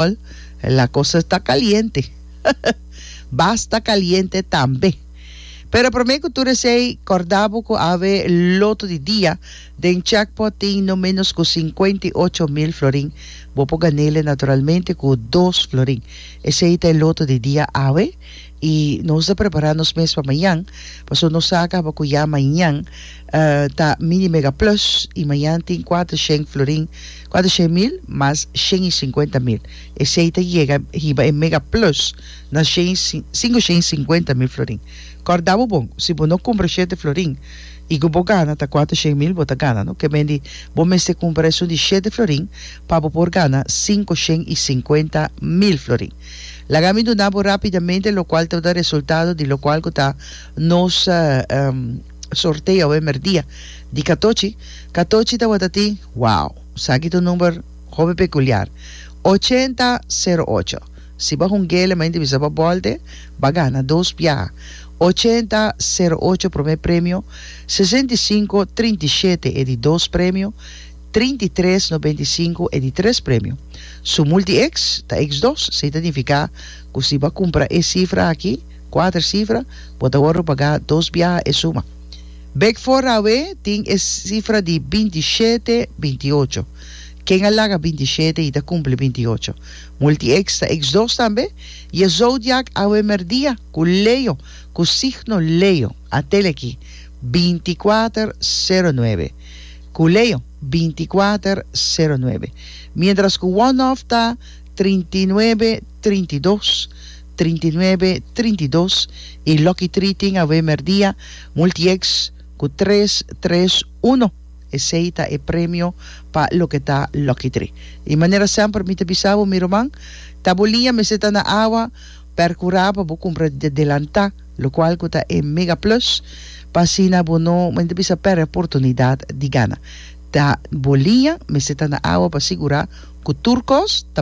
Sol, la cosa ta caliente. Basta caliente tambe. Pero prome cu tur esey, corda bo cu awe loto di dia den jackpot tin no menos cu cincuenta y ocho mil florin. Bo por ganele naturalmente cu dos florin. Esey ta e loto di dia awe y nos ta prepara nos mes pa mañan. Paso nos sa caba cu ya mañan ta Mini Mega Plus y mañan tin cuater sheng florin. Cuatrocientos mil mas shen i cincuenta mil, esey ta yega hiba e mega plus na shen i cinco shen i cincuenta mil florin. Corda bo bon, si bo no cumpra shete florin i cu bo gana ta cuatrocientos mil bo ta gana no, kemen di bo mester cumpra esun di shete florin pa bo por gana cinco shen i cincuenta mil florin. Laga mi duna bo rapidamente locual ta da resultado di locual cu ta nos Sorteo awe merdia di katochi katochi tabata tin wow saki ta un number hopi pekuliar ochenta sero ocho si ba hungué lema inti bisa ba bòlte ba gana dos biaha ochenta sero ocho promé premio sesenta i sinku trinta i shete e di dos premio trinta i tres nobenta i sinku e di tres premio su multi eks ta eks dos si ta nifiká ku si ba kumpra e sifra aki Kuater sifra bo ta wordo pagá dos biaha e suma. Bek for awe tin e sifra di binti i shete, binti i ocho. Ken a laga binti i shete i ta kumpli binti i ocho? Multieks ta eks dos tambe? I e zodiak awe merdia ku Leo, ku signo Leo? A tele aki, binti i kuater, sero nuebe. Ku Leo, binti i kuater, sero nuebe. Mientras ku One Off ta trinta i nuebe, trinta i dos, trinta i nuebe, trinta i dos i Lucky Tree tin awe merdia Multieks ku tres, tres, uno. Esei ta e premio pa loke ta Lucky Tree. I manera semper mi ta bisa bo mi ruman, ta bo liña mester ta na awa per kurá pa bo kumpra di adelantá, lokual ku ta e mega plus, pa asina bo no, mi ta bisa, pèrdè oportunidat di gana. Ta bo liña mester ta na awa pa sigurá ku tur kos ta.